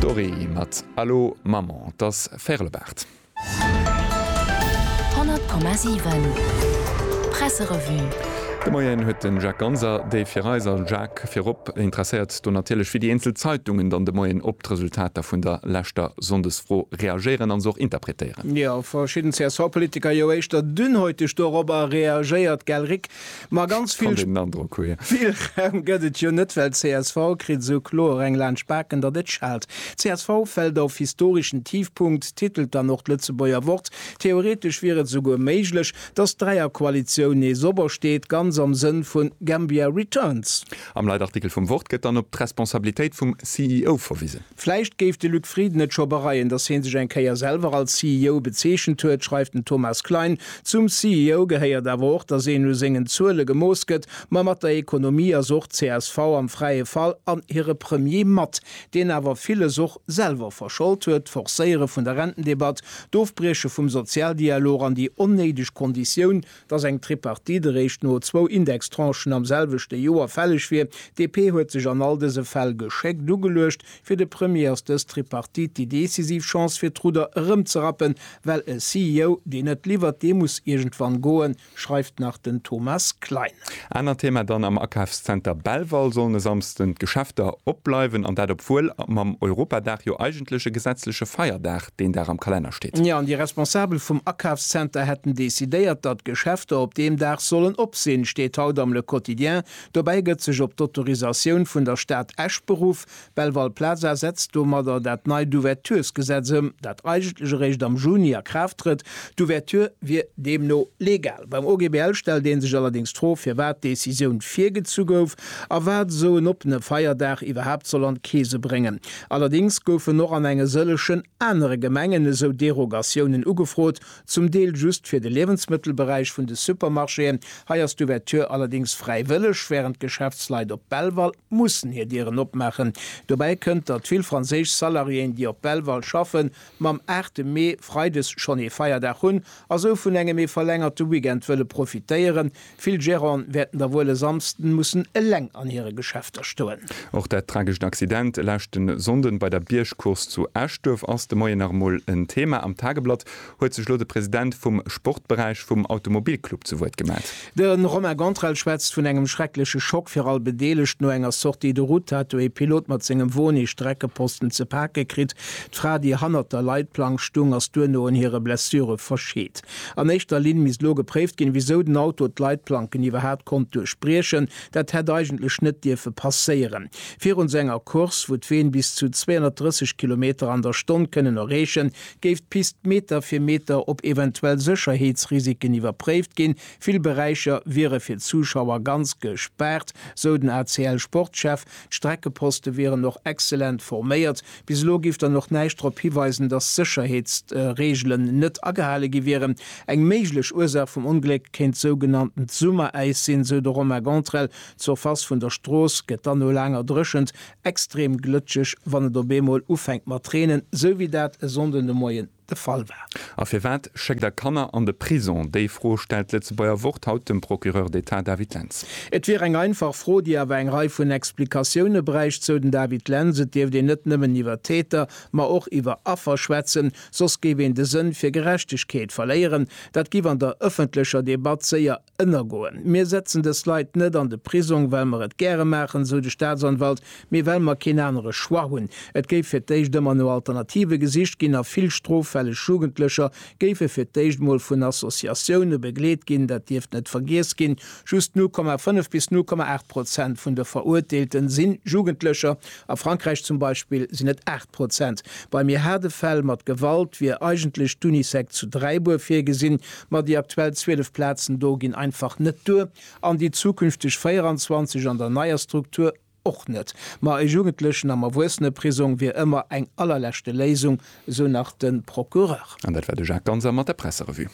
D'Dorée mat Allo Maman, et ass Fèrlebart. 100,7 Presserevue. De Moien huet de Jacques Ganser déi fir eis a Jacques virop interesséiert do natierlech wéi déi eenzel Zeitungen dann de Moien op d'Resultater vun der leschter Sonndesfro reagéieren an se och interpretéieren. Jo, verschidden CSV-Politiker, jo éischter dünnhäuteg dorobber reagéiert. Gell Rick? Ma ganz vill Spillraum gëtt et jo net, well csv kritt esou kloer eng laanscht d'Baken, datt et schaalt. Csv fält of, historischen Tiefpunkt titelt dann och d'Lëtzebuerger Wort. Theoretesch wier et esouguer méiglech, datt d'Dräierkoalitioun nees opersteet, ganz am Sënn vun Gambia Returns. Am Leitartikel vum Wort gëtt dann op d'Responsabilitéit vum CEO verwise. Vläicht géif de Luc Frieden et scho bereien, datt hie sech eng Kéier selwer als CEO bezeechent huet, schreift den Thomas Klein. Zum CEO gehéiert awer och, datt een u sengen Zuele gemooss gëtt. Ma mat der Ekonomie ass och csv am fräie Fall an hire Premier mat, deen awer villes och selwer verschold huet, d'Forcéiere vun der Rentendebatt, d'Ofbrieche vum Sozialdialog an déi onnéideg Konditioun, dass eng Tripartite eréischt no zwou Indextranchen am selwechte Joer fälleg wier. DP huet sech an all dëse Fäll geschéckt ugeluecht. Fir de Premier ass dës Tripartite déi decisiv Chance fir d'Rudder erëmzerappen, well e CEO, deen net liwwert, dee muss iergendwann goen, schreift nach den Thomas Klein. Anert Thema dann, Am Akafszenter Belval sollen e Samsden d'Geschäfter opbleiwen, an dat obwuel mam Europadag jo eigentlech e gesetzleche Feierdag deen Dag am Kalenner steet. Jo, an déi Responsabel vum Akafszenter hätten decidéiert, datt d'Geschäfter op deem Dag sollen op sinn, steet haut am Le Quotidien. Dobäi gëtt sech op d'Autorisatioun vun der Stad Esch beruff, D'Belval Plaza setzt domadder dat neit Ouverturesgesetz ëm, dat eigentlech eréischt am Juni a Kraaft trëtt. D'Ouverture wier deemno legal. Beim OGBL stellt ee sech allerdéngs d'Fro, firwat d'Decisioun virgezu gouf a wat esou en oppene Feierdag iwwerhaapt soll an d'Keese bréngen. Allerdéngs goufen och an enge sëllechen anere Gemengen esou Derogatiounen ugefrot, zum Deel just fir de Liewensmëttelberäich vun de Supermarchéen. Hei ass d'Ouverture allerdéngs fräiwëlleg, wärend d'Geschäftsleit op Belval. mussen hir Dieren opmaachen. Dobäi kënnt, datt vill franséisch Salariéen, déi op Belval schaffen, mam aachte Mee freides schonn ee Feierdag hunn a sou vun engem ee verlängerte Weekend wëlle profitéieren. Vill Gerante wäerten da wuel e Samsden mussen eleng an hire Geschäfter stoen. Och dat tragescht Accident e leschte Sonnden bei der Biergcourse zu Eschduerf ass de Moien nach emol en Thema am Tageblatt. huet sech elo de President vum Sportberäich vum Automobilclub zu Wuert gemellt. De Romain Gantrell schwätzt vun engem schreckleche Schock fir all Bedeelegt. No enger Sortie de route hat du ee Pilot mat sengem Won ee Streckeposten ze pake kritt. D'Fra, déi hannert der Leitplank stung, ass duerno un hire Blessure verscheet. An éischter Linn misst elo gepréift ginn, wisou den Auto d'Leitplanken iwwerhaapt konnt duerchbriechen. Dat hätt eigentlech net dierfe passéieren. Virun esou enger Course, wou d'Ween bis zu 230 Kilometer an der Stonn kënnen erreechen, Géif d'Pist Meter fir Meter op eventuell Sécherheetsrisiken iwwerpréift ginn. Vill Beräicher wiere fir d'Zuschauer ganz gespaart, sou den ACL-Sportchef. D'Streckeposte wieren och excellent forméiert. Bis elo géif dann och näischt drop hiweisen, datt d'Sécherheetsregelen net agehale gi wieren. Eng méiglech Ursaach vum Ongléck kéint sougenanntent Summeräis sinn, sou de Romain Gantrell. D'Surface vun der Strooss gëtt dann no laanger Dréchent Extrem glëtscheg wann et op eemol ufänkt mat reenen, sou wéi dat e Sonnden de Moien de Fall war. A firwat schéckt der Kanner an de Prison? Déi Fro stellt d'Lëtzebuerger Wort haut dem Procureur d'Etat David Lentz. Et wier eng einfach Fro, déi awer eng Rei vun Explikatioune bräicht, sou den David Lentz. Et dierft een net nëmmen iwwer Täter, ma och iwwer Affer schwätzen, soss géif een de Sënn fir Gerechtegkeet verléieren. Dat giff an der ëffentlecher Debatt séier Ënnergoen. Mir setzen dës Leit net an de Prisong, well mer et gäre maachen, sou de Staatsanwalt, mee well mer keen anere Choix hunn. Et géif fir d'éischt ëmmer no Alternative gesicht ginn a vill stroffälleg Jugendlecher géife fir d'éischt emol vun Associatioune begleet ginn. Dat dierft net vergiess ginn, just 0,5 bis 0,8 Prozent vun de Verurteelte sinn Jugendlecher, a Frankräich zum Beispill sinn et 8. Prozent. Bei méi haarde Fäll mat Gewalt wier eigentlech d'Unisec zu Dräibuer virgesinn, ma déi aktuell 12 Plazen do ginn einfach net duer, an déi zukünfteg 24 an der neier Struktur och net. Ma e Jugendlechen am Erwuesseneprisong wier ëmmer eng allerleschte Léisung, esou nach de Procureur. An dat war de Jacques Ganser mat der Presserevue.